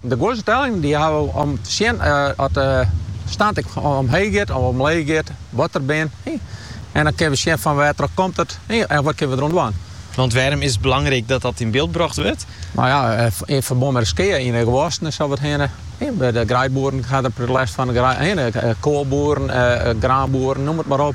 De guorse tellingen die hawwe we om te sjen as de stand ek omheech giet of omleech giet, wat der bin. En dan kinne we sjen fan wêr't troch komt it en wat kinne we der'oan dwaan. Want wêrom is it belangryk dat dat yn byld brocht wurdt? Nou ja, yn ferbân mei de skea yn de gewassen en sa wat hinne by de greidboeren hat der lêst fan, hinne koalboeren, graanboeren, noem it mar op.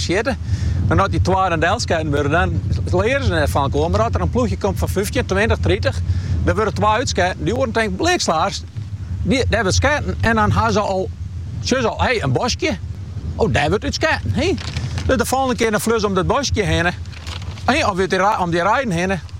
sjitte. Mar as dy twa dan delsketten wurde, dan leare se net fan elkoar. Mar as der in ploechje komt fan fyftjin, tweintich, tritich, dêr wurde twa útsketten. Dy oaren tinken blikstiender, dy, dêr wurdt sketten. En dan ha se al, sjogge se al, hé, in boskje, o, dêr wurdt út sketten, hé. Dus de folgjende kear dan fleane se om dat boskje hinne, hé, of om dy reiden hinne.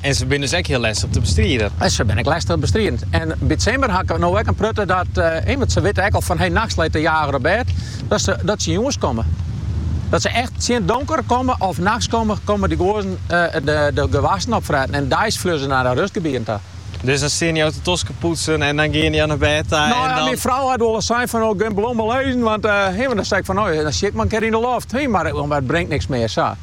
En se binne dus ek hiel lestich te bestriden. Se binne ek lestich te bestriden. En by it simmer ha ik no ek in protte dat ommers se witte ek al fan hey nachts leit de jager op bêd dat se dat se jûns komme. Dat se echt tsjin donker komme of nachts komme, komme dy guozzen de gewassen opfretten en deis fleane se nei de rustgebieten ta. Dus dan steane jo te toskpoetsen en dan geane jo nei bêd ta en dan. No ja, myn frou hat wol ris sein fan oh gean no mar lizzen want hey dan sei ik fan no dan sjit mar in kear yn de loft, hey mar it bringt niks mear sa.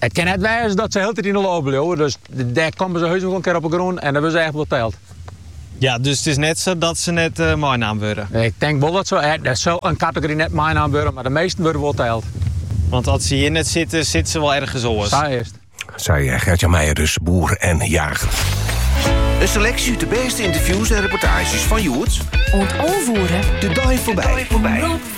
It kin net wêze dat se hieltyd yn de loft bliuwe, dus dan komme se heus wol in kear op 'e grûn en dan wurde se echt wol teld. Ja, dus it is net sa dat se net meinaam wurde? Ik tink wol dat se, der sil in kategory net meinaam wurde, mar de measten wurde wol teld. Want as se hjir net sitte, sitte se wol ergens oars? Sa is it. Sei Gert-Jan Meijer dus, boer en jager. In seleksje út de bêste ynterviews en reportaazjes fan hjoed. Oant alve oere. De dei foarby.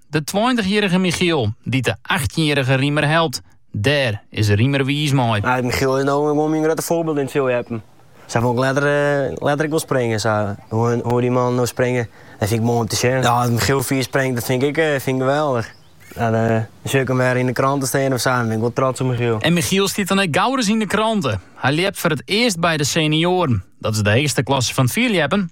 De tweintichjierrige Michiel dy't de achttjinjierrige Riemer helpt. Dêr is Riemer wiis mei. No Michiel is no gewoan myn grutte foarbyld yn it fierljeppen. Sa wol ik letter ek wol springe. Sa hoe't dy man no springt, dat fyn ik moai om te sjen. Ja, as Michiel fier springt, dat fyn ik geweldich. Dan sjoch ik him wer yn de krante stean of sa, dan bin ik wol trots op Michiel. En Michiel stiet dan ek gauris yn de krante. Hy ljept foar it earst by de senioaren. Dat is de heechste klasse fan it fierljeppen.